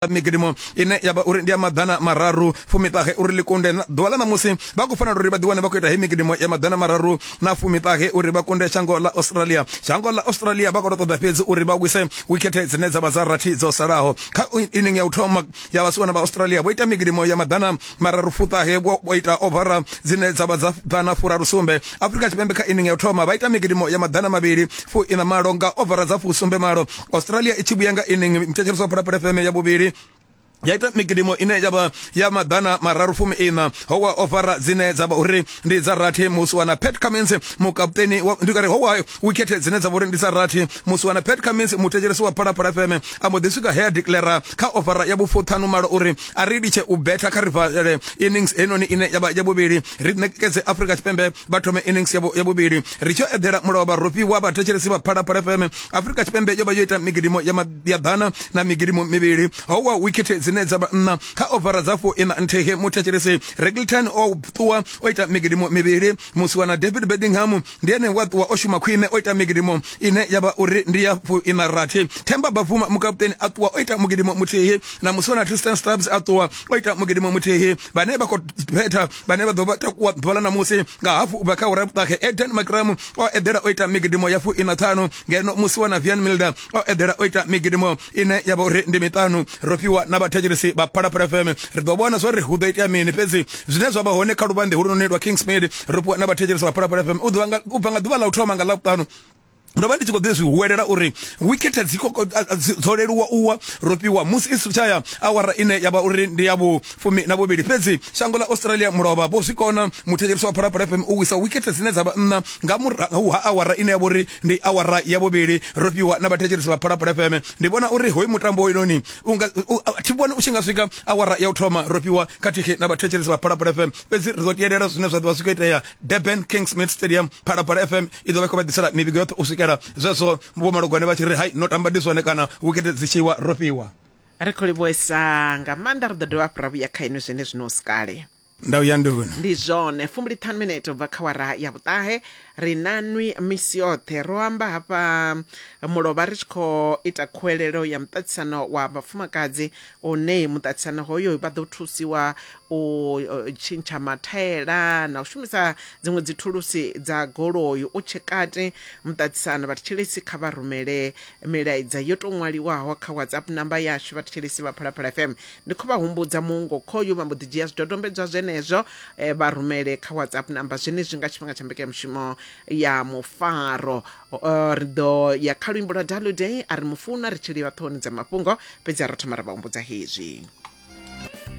migidimu ine ya vha uri ndi ya maḓana mararu fumiṱahe uri ḽi kunde ḓuvha ḽa ṋamusi vha khou fanela uri vha ḓiwane vha khou ita he migidimu ya maḓana mararu na fumiṱahe uri vha kunde shango ḽa australia shango ḽa australia vha khou tou ṱoḓa fhedzi uri vha wise wikhethe dzine dza vha dza rathi dzo salaho kha inning ya u thoma ya vhasiwana vha australia vho ita migidimu ya maḓana mararu fuṱahe vho ita ovara dzine dza vha dza ḓana furaru sumbe afurika tshipembe kha inning ya u thoma vha ita migidimu ya maḓana mavhili fu ina malo nga ovara dza fu sumbe malo australia i tshi vhuya nga ining mithetsheliswa phalaphala fm ya vhuvhili ya ita mikidimo ine ya vha ya maḓana mararu fumi ina ho wa ofara dzine dza vha uri ndi dza rathi musi wana pet cummins mukaputeni ndi kare ho wa wikhethe dzine dza vha uri ndi dza rathi musi wana pet cummins muthetshelesi wa phalaphala fm a mbo ḓi swika he a declara kha ofara ya vhufuṱhanu malo uri a ri litshe u betha kha rivalele innings heinoni ine ya vha ya vhuvhili ri ṋekedze afrika tshipembe vha thome innings ya vhuvhili ri tshi eḓela mulovha rofhi wa vhathetshelesi vha phalaphala fm afrika tshipembe yo vha yo ita migidimo ya ḓana na migidimo mivhili ho wa wikhethe dzine dza vha nṋa kha ovara dza fo ina nthege muthetshelesi regleton o ṱuwa o ita migidimo mivhili musiwana david bedingham ndi ene wa ṱuwa o shuma khwine o ita migidimo ine ya vha uri ndi ya fo ina rathi themba bafuma mukaputeni a ṱuwa o ita mugidimo muthihi na musiwana tristan stabs a ṱuwa o ita mugidimo muthihi vhane vha khou betha vhane vha ḓo vha takuwa ḓuvha ḽa ṋamusi nga hafu ubva kha ura vhuṱahe eden makramu o eḓela o ita migidimo ya fu ina ṱhanu ngeno musi wa na vian milda o eḓela o ita migidimo ine ya vha uri ndi miṱanu ro fhiwa na vhathetshelesi vha phalaphala fm ri ḓo vhona zwa ri hu ḓo itea mini fhedzi zwine zwa vha hone kha luvhanḓe hulunoni lwa kingsmid ro fhiwa na vhathetshelesi vha phalaphala fm u bva nga ḓuvha ḽa u thoma nga ḽa vhuṱanu ndo vha ndi tshi khou ḓi zwi huwelela uri wikhethe dzi dzo leluwa u wa rofhiwa musi i sithu tshaya awara ine ya vha uri ndi ya vhufumi na vhuvhili fhedzi shango ḽa australia mulovha vho zwi kona muthetshelisi wa phalaphala fm u wisa wikhethe dzine dza vha nṋa nga murahu ha awara ine ya vha uri ndi awara ya vhuvhili rofhiwa na vhathetshelisi vha phalaphala fm ndi vhona uri hoyu mutambo hoyunoni thi vhoni u tshi nga swika awara ya u thoma rofhiwa khathihi na vhathetshelisi vha phalaphala fm fhedzi ri ḓo tiyelela zwine zwa ḓo vha zwi khou itea durban kingsmith stadium phalaphala fm i ḓo vha khou vha ḓisela mivhigo yoṱhe u swikela zwezwo vho malugwane vha tshi ri hai no tamba ndi zwone kana wikete dzi tshiwa ro fhiwa ri khou livhuesa nga maanḓa ri ḓo dovha hafhu ra vhuya kha inwi zwene zwino si kale ndau ya nduni ndi zwone fumbulithanu minete ubva kha wara ya vhuṱahe ri na nwi misi yoṱhe ro amba hafha mulovha ri tshi khou ita khuwelelo ya muṱaṱisano wa vhafumakadzi hune muṱaṱisano hoyo vha ḓo thusiwa u tshintsha mathaela na u shumisa dziṅwe dzithulusi dza goloi u tshe kati muṱaṱisano vhathetshelesi kha vha rumele milaedza yo tou ṅwaliwaho kha whatsapp namba yashu vhathetshelesi vha phalaphala fm ndi khou vha humbudza muungo khoyu vha mbo ḓi dzhia zwidodombedzwa zwenezwo eh, vha rumele kha whatsapp namba zwenezwi nga tshifhinga tsha mbekanyamushumo ya mufaro Uh, ri ḓo ya kha luimbo lwa dalu day a ri mufuna ri tshi livha ṱhohoni dza mafhungo fhedzi a ro thoma ra vha humbudza hezwi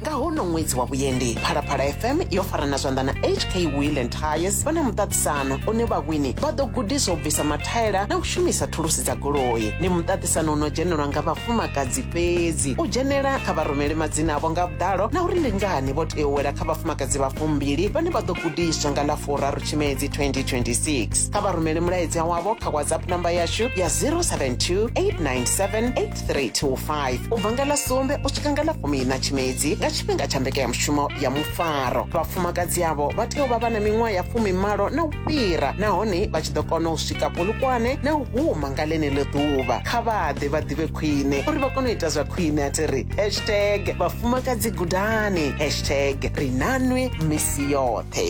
nga hono ṅwedzi wa vhuendi phalaphala fm yo farana zwanḓa na hk wheel and tires vha na muṱaṱisano une vhawini vha ḓo gudiswa u bvisa mathaela na u shumisa thulusi dza goloi ndi muṱaṱisano u no dzhenelwa nga vhafumakadzi fhedzi u dzhenela kha vha rumele madzina avho nga vhuḓalo na uri ndi ngani vho tea u wela kha vhafumakadzi vha fumbili vhane vha ḓo gudiswa nga ḽa furaru tshimedzi 2026 kha vha rumele mulaedza wavho kha whatsapp namba yashu ya 072 897 8325 u bva nga ḽa sumbe u swika nga ḽa fumi na tshimedzi nga tshifhinga tsha mbekanyamushumo ya mufaro vhafumakadzi avho vha tea u vha vha na miṅwaha ya fumi malo na u fhira nahone vha tshi ḓo kona u swika polukwane na u huma nga ḽeneḽo ḓuvha kha vha ḓe vha ḓivhe khwine uri vha kone u ita zwa khwine a thi ri hashtag vhafumakadzi gudani hashtag ri nanwi misi yoṱhe